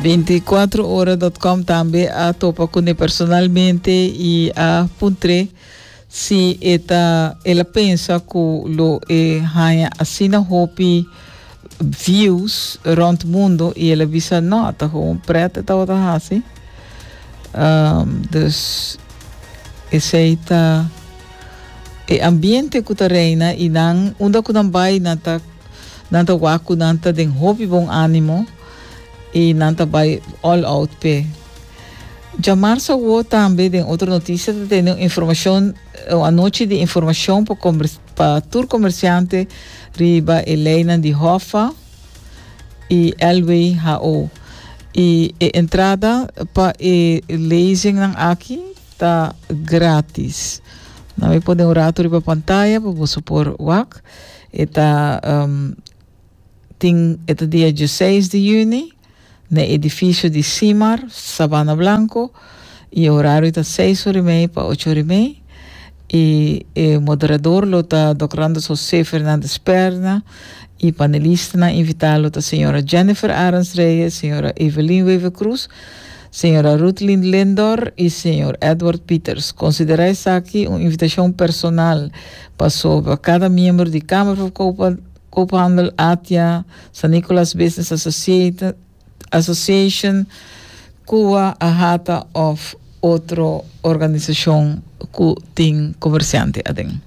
Veinticuatrohora.com tambe a topa cu ne personalmente y a puntre Si e ta el a pensa cu lo e haña asina hopi views rond mundo y el a bisa no ta gewoon pret e tabata haci. Um, dus esey ta e ambiente cu ta reina y nan unda cu nan bay nan ta nan ta wak cu nan ta den hopi bon animo y nan ta bay all out p'e. Djamars awo tambe den otro noticia ta tene un informacion un anochi di informacion pa, pa tur comerciante riba e leinan di Hoffa y Elway HO. Y e entrada pa e lezingnan aki ta gratis. Na mi pone un rato riba pantaya pa boso por wak. E ta um, tin, e ta dia 16 di juni. n'e edifisio di Simar, Sabana Blanco, i e orario ta seis ora i mei pa ocho ora i mei, i e moderador lo ta Dòk Randers José Fernández Perna, i panelistanan invitá lo ta señora Jennifer Arends Reyes, señora Evelyn Wever Cruz, señora Ruthlyn Lindor i señor Edward Pieters. Konsiderá esaki un invitashon personal pasobra kada miembro di Kamer Verkoper Koophandel Atia, San Nicolas Business Association, Kua Ahata of otro organisashon ku tin komersiante aden.